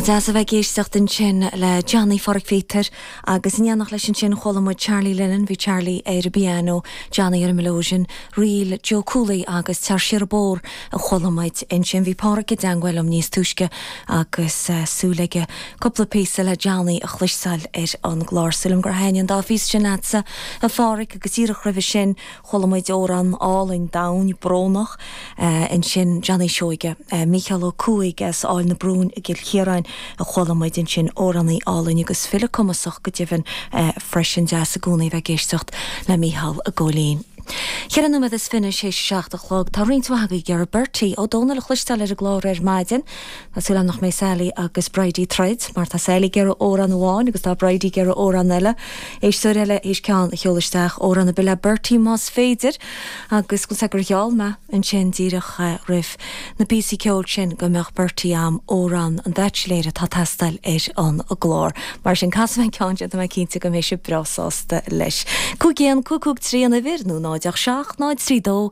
Nach deas a bheith ag éisteacht ansin le Johnny Phádraic Pheter agus in éineacht leis ansin chuala muid Charlie Lennon, bhí Charlie ar an bpianó, Johnny ar an mileoidean, ríl Joe Cooley agus Tar Siar an Bóthar a chuala muid ansin. Bhí Páraic i dteangmháil liom níos túisce agus súil aige cúpla píosa le Johnny a chloisteáil ar an gclár. Súil agam gur thaitin an dá phíosa sin leatsa a Pháraic agus díreach roimhe sin Chuala muid amhrán álainn, domhain, brónach ansin, Johnny Seoighe. Mícheál Ó Cuaig as Aill na Brún i gCill Chiaráin a chuala muid ansin, amhránaí álainn agus file cumasach go deimhin freisin. Deas i gcónaí a bheith ag éisteacht le Mícheál i gcónaí. Ceithre nóiméad is fiche, théis a seacht a chlog. Tá roinnt mhaith agaibh ag iarraidh Bertie Ó Domhnaill a chloisteáil ar an gclár ar maidin. Tá súil agam nach mbeidh Sally agus Bridie ag troid, mar tá Sally ag iarraidh amhrán amháin agus tá Bridie ag iarraidh amhrán eile, éisteoir eile théis ceann a sheoladh isteach, amhrán ar bith le Bertie más féidir, agus consan é gur gheall mé ansin díreach roimh na píosaí ceoil sin go mbeadh Bertie a'm Amhrán an Bhaitsiléir atá ag teastáil ar an gclár. Mar sin, casfaidh mé an ceann sin, tá mé cinnte go mbeidh sibh breá sásta leis. Cúig 1 5 5 3 an uimhir, nó 0 8 7 0 3 2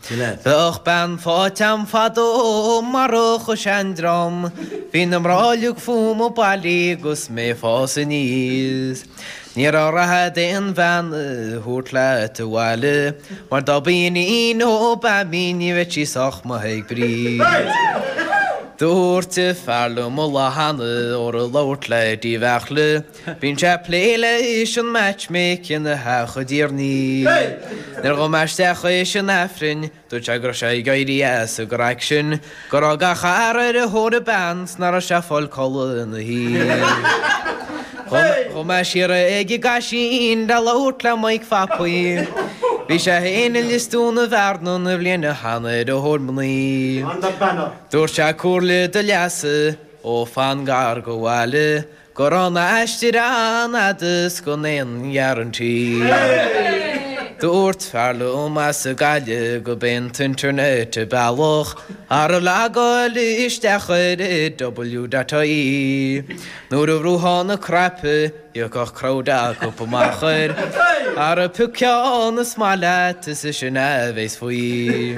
Bheadh bean faighte a'm fadó marach an seandream Bhí na mná uilig fúm ag bailiú agus mé ag fás aníos Ní raibh rath d'aon bhean a thabhairt leat abhaile Mar dá b'í iníon Obama í ní bheadh sí sách maith ag Bríd Dúirt fear liom an lá cheana ara labhair le dímheach le. Bíonn sé ag plé leis an matchmaking a theacht i dtír Nuair a ghabh mé isteach théis an Aifrinn, dúirt sé go raibh sé ag éirí as ag an raic sin, go raibh gach fear ar thóir bean 's nach raibh sé ag fáil codladh na hoíche Ghabh mé siar ag an gCaisín le labhairt le Mike Phapaí, bhí sé féin i Lios Dúin Bhearna an bhliain cheana ar thóir mnaoi Dúirt sé comhairle do leasa, ó fan gar go bhaile, Go raibh an t-aistear an-fhada is gan aon gharantaí. Dúirt fear liom as Gaillimh go b'é an t-internet an bealach ara logáil isteach ar IW dot IE nuair a bhrúfá na cnaipí thiocfadh crowd acub amach air ara pioc ceann is maith leat is í sin a bhéas faoi.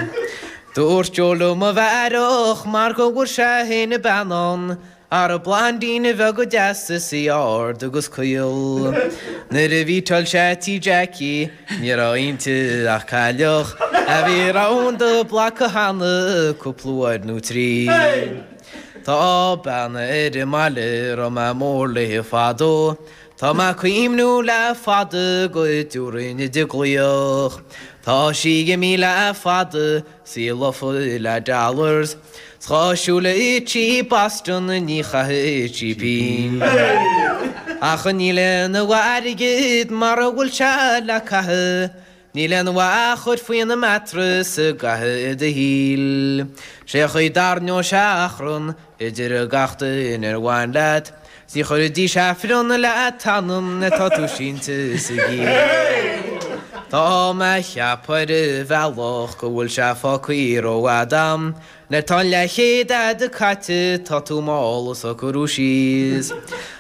Dúirt Joe liom a bheith aireach mar go bhfuair sé fhéin bean ann Ara blondeín bheag dheas is í ard agus caol. Nuair a mheetáil sé í tí Jackie ní raibh inti ach cailleach a bhí round the block cheana cúpla uair nó trí. Tá bean ar an mbaile a raibh mé mór léi fadó. Tá mé ag cuimhniú le fada go dtiúrfainn di glaoch. Tá sí imithe le fada. Sea, lofa le dollars, 's dhá shúil i cheap Boston ní chaithfidh sí pínn. Ach níl aon mhaith in airgead mara bhfuil sé le caitheamh, níl aon mhaith a chur faoina mattress i gcaitheamh do shaoil. 'Sé an chaoi a dtarraingeoidh sé achrann idir gach duine ar bhain leat, Ní chuirfidís Aifreann le t'anam nuair atá tú sínte sa gcill. Tá mé ag ceapadh ar bhealach go bhfuil sé fágtha rófhada a'm nuair atá an leathchéad a'd caite tá tú mall ag socrú síos.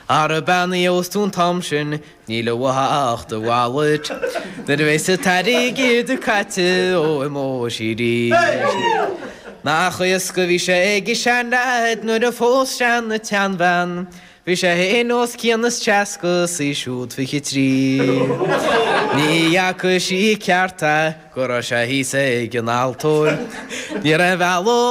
Ara bean a phósfadh thú an t-am sin Níl uaithi ach do wallet nuair a bheas an t-airgead caite ó imeoidh sí arís. Nach éasca a bhí sé ag an seanleaid nuair a phós sé an tseanbhean, bhí sé fhéin os cionn is seasca is í siúd fiche trí. Ní fhaca sí ceart é go raibh sé thíos ag an altóir. Ní raibh aon bhealach.